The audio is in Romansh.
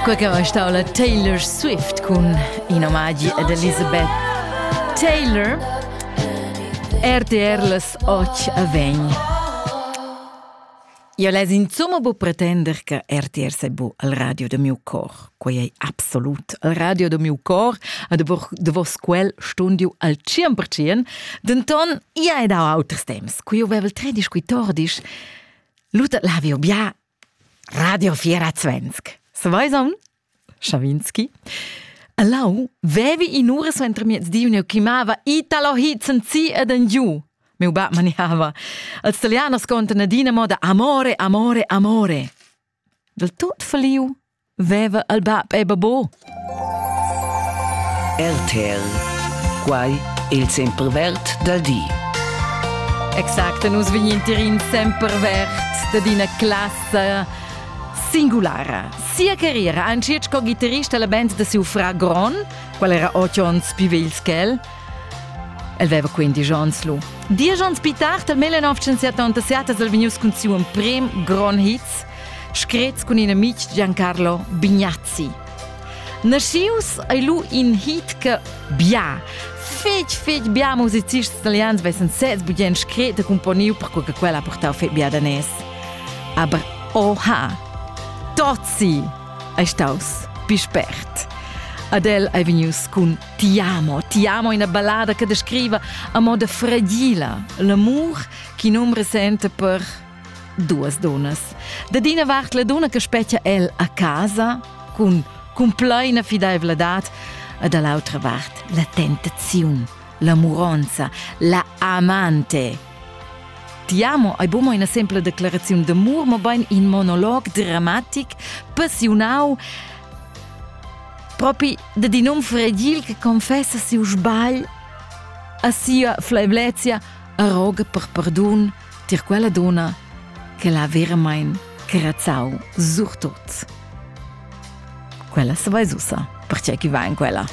Quei che va stau la Taylor Swift cun in omagi ad Elizabeth Taylor. RTR las 8 a vegn. Io les insomma bu pretender che RTR sei bu al radio de miu cor. Quei ei absolut al radio de miu cor a de, vo, de vos quel stundio al 100%, denton ia è da auters temps. Qui io vevel tre discuitor dis, lutat lavio bia Radio 24. Sveison, Schawinski. Lau vevi in ura suentermiez di un'eu chiamava Italo Hizenzi ed en giu. Meu bab maniava. Als italianos conten adina moda amore, amore, amore. Del tot faliu Veva il bab e babo? RTL. Quai è il sempervert dal di. Exact, nus vegnintirin semper verts da d'ina classa singulara. Sia carriera ha anzi sco ghitarrista la band da siu fra Gron, qual era otto onns più vegls che el. El veva quindi Jonslu. Dies onns più tardi, nel 1977, al venius cun siu emprim Gron Hits, screts cun in amitg Giancarlo Bignazzi. Naschius ei lu in hit che bia fetg fetg bia musicists italians vessen sez bugen scret e componiu perquei che quella ha portau fetg bia danès. Aber oha! Tozzi ei staus più spert. Adele ei vegnius cun Ti amo, ti amo ina ballada che descriva a moda fragila l'amur che num resente per Duas dunnas. Da d'ina vart la dunna che spetga el a casa cun cumpleina fidaivladad e da l'autra vart la tentaziun, la muronza, la amante. Ti amo hai bumo ina semple declaraziun d'amur, ma bain in monolog dramatic, passionau, propi da di num fredil che confessa siu sbagl a sia flaivlezia e roga per perdun – tier quella donna che l'ha veramain crezzau surtut. Quella sa vai ussa, perché chi va in quella.